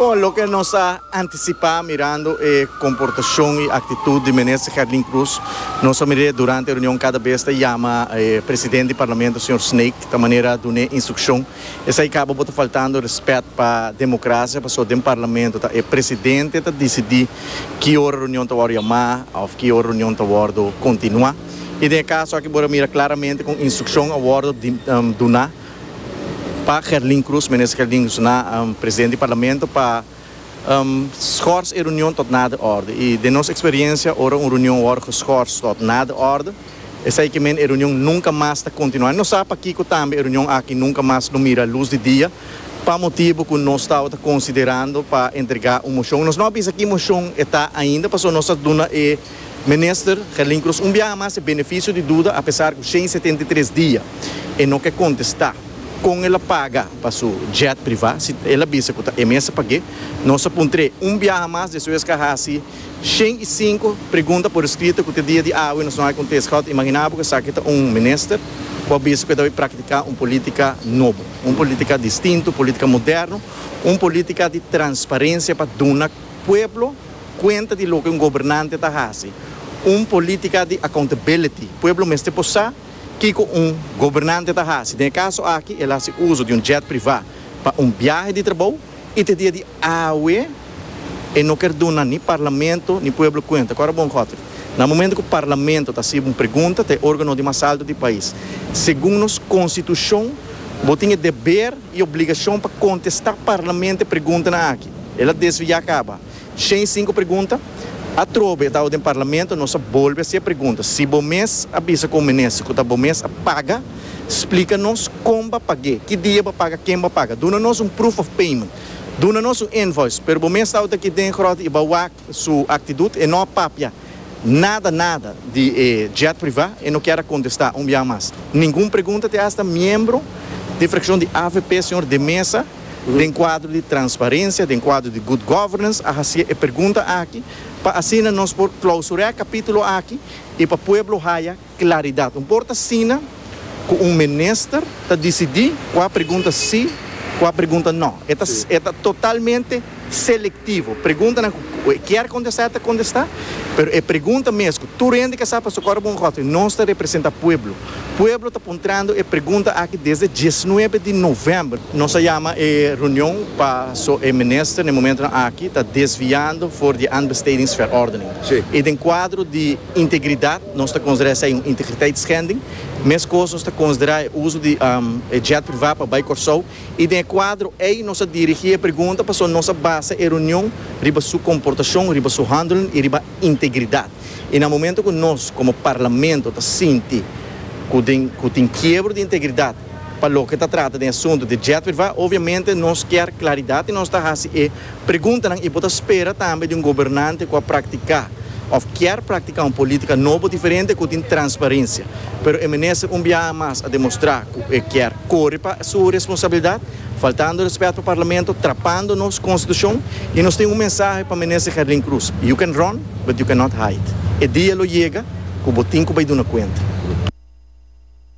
Bon, loke nos a antisipá mirando e komportashon i aktitut di Minister Gerlin Cruz, nos a mir'é durante e reunion kada bes ta yama e Presidente di Parlamento señor Snake ta manera dun'é instrukshon. Esei kaba bo ta faltando rèspèt pa demokrasia pasobra den Parlamento ta e Presidente ta disidí ki ora reunion ta wòrdu yamá òf ki ora reunion ta wòrdu kontinuá. I den e kaso aki bo ta mira klaramente kon instrukshon a wòrdu duná. Pa Gerlin Cruz, Minister Gerlin Cruz na Presidente di Parlamento pa schors e reunion tot na de orde y den nos experiencia ora un reunion wor geschors tot na de orde esai ke men e reunion nunca mas ta continua. No sa pakiko tambe e reunion aki nunca mas lo mira luz di dia pa motibo cu nos tabata considerando pa entrega un mocion. Nos no a bisa ki mocion e ta ainda pasobra nos ta duna e. Minister Gelin Croes un biaha mas e beneficio di duda a pesar cu shen setenta y tres dia e no ke contesta con el a paga pa su jet priva si el a bisa cu ta e mester pag'e. Nos a puntr'e un biaha mas despues ke a haci shen y cinco pregunta por escrito cu te dia di awe nos no hay contesta. Goud imagina bo cu esaki ta un minister cu a bisa cu e ta bay practica un politica nobo, un politica distinto, un politica moderno, un politica di transparencia pa duna. Pueblo cuenta di loke un gobernante ta haci, un politica di accountability. Pueblo mester por sa kico un gobernante ta haci. Den e caso aki el haci uzo di un jet priva pa un biahe di trabou y te dia di awe e no ker duna ni Parlamento ni Pueblo cuenta. Cu ora bon Godfrey, na momento cu Parlamento ta haci un pregunta ta e organo di mas alto di pais, segun nos Constitucion bo tin e deber. E obligashon pa kontestá parlament e preguntanan aki, el a desviá kaba. Shen sinku pregunta, atrobe e tao den parlament, nos a bolbe hasié pregunta. Si bo mes a bisa kon menester ku ta bo mes a paga, splika nos kon b'a pag'é, ki dia b'a paga, ken b'a paga. Duna nos un proof of payment. Duna nos un invoice. Pero bo mes tao ta aki den gròt i b'a wak su aktidut, e no a papia. Nada nada di e jet privá. E no kier a kontestá un biaha mas ningun pregunta te asta miembro di frakshon di avp señor De Meza den kuadro di transparensia, den kuadro di good governance a hasié e pregunta aki pa asina nos por klausurá e kapítulo aki i pa pueblo haya Claridad. Un por ta asina cu un minister ta dicidi cua pregunta si, cua pregunta no. E ta e ta totalmente selectivo. Preguntanan cu cu e kier contesta e ta contesta, pero e pregunta mes cu tur hende ke sa paso Coro Bongote nos ta representa pueblo. Pueblo ta puntrando e pregunta aki desde dieznuebe di november. Nos a yama e reunion paso e minister na e momentonan aki ta desviando for di aanbestedingsverordening. Si. I den cuadro di. Integridad, nos ta considera esey un integriteitschending. Mescos nos ta considera e uso di e jet priva pa bay Corsou y den e cuadro ey nos a dirigi e pregunta pasobra nos a basa e reunion riba su comportacion, riba su handelen y riba integridad. Y na momento cu nos como Parlamento ta sinti cu den cu tin kiebro di integridad, Pa loke ta trata den asuntu di Jetwitwa, obiamente nos kier klaridat i nos ta hasi e preguntanan, i bo ta spera tambe di un gobernante ku a praktiká òf kier praktiká un polítika nobo diferente ku tin transparensia. Pero e minister un biaha mas a demostrá ku e kier kore pa su responsabilidat, faltando rèspèt pa Parlamento, trapando nos Konstitushon. I nos tin un mensahe pa minister Gerlin Cruz, You can run, but you cannot hide. E dia lo yega ku bo tin ku bai duna kuenta.